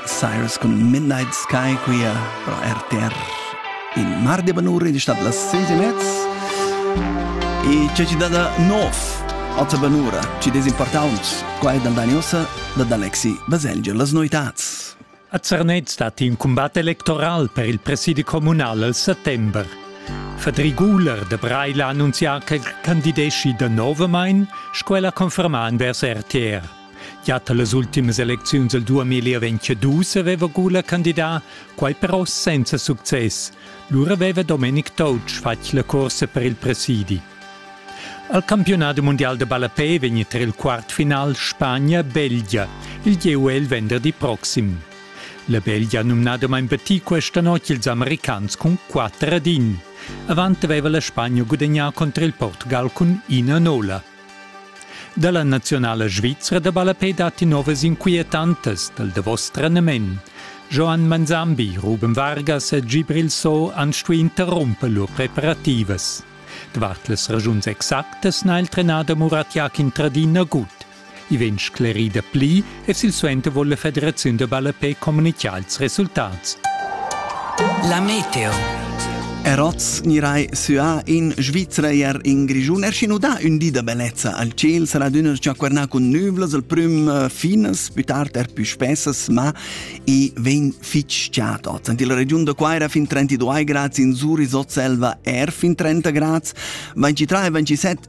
Cyrus cun Midnight Sky qui a RTR in mar de banura in stad las 6 e mezz e c'è ci dada nov ota banura ci des importants qua è dandaniosa da D'Alexi Baselgia las noitats A Zernez dat in combat electoral per il presidi comunal al settember. Fedri Guler de Breil ha annunzià che candidesci de novamain, sco ella conferma envers RTR. Gia las ultimas elecziuns del 2022 aveva Gula candidà, quai però senza success. Lura aveva Domenic Toutsch fatg la corsa per il presidi. Al campionat mondial de ballapé vegn tra il quartfinal Spagna-Belgia, il gieu è il venderdi proxim. La Belgia ha numnadamain batì questa notg ils americans cun 4 ad 1. Avant aveva la Spagna gudagnà contro il Portugal cun 1 a 0. Dalla nazionala svizra da ballapei datti novas inquietantas dal davos trenament. Joan Manzambi, Ruben Vargas e Gibril So han stuì interrumper lur preparativas. Davart las ragiuns exactas n'ha il trenader Murat Yakin tradì nagut. I vegn sclerida pli e silsuenter vul la Federaziun da ballapei communitgar ils resultats. La meteo. Eroz nirai süa in Svizra er in Grischun. Er sch'in udà ün di da bellezza al ciel sarà d'üna chaquernà cun nüvlas al prüm eh, finas, pü tard er pü spessas, ma i vegn fich chat oz. In la regiun da Quaira fin 32 grads, in Zuri Sotselva er fin 30 grads, 23 e 27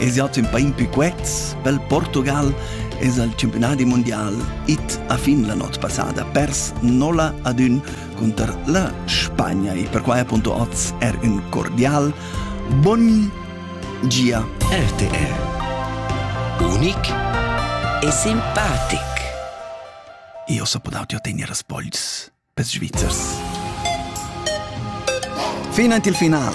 Es ja tün pain pü quets, pel Portugal es al campionadi mundial it a fin la not passada pers nola ad ün conter la Spagna e per quai appunto oz er ün cordial boni gia RTR. Unic e simpatic. Io so podauti ottenere spoils per Svizzers. Fino il final.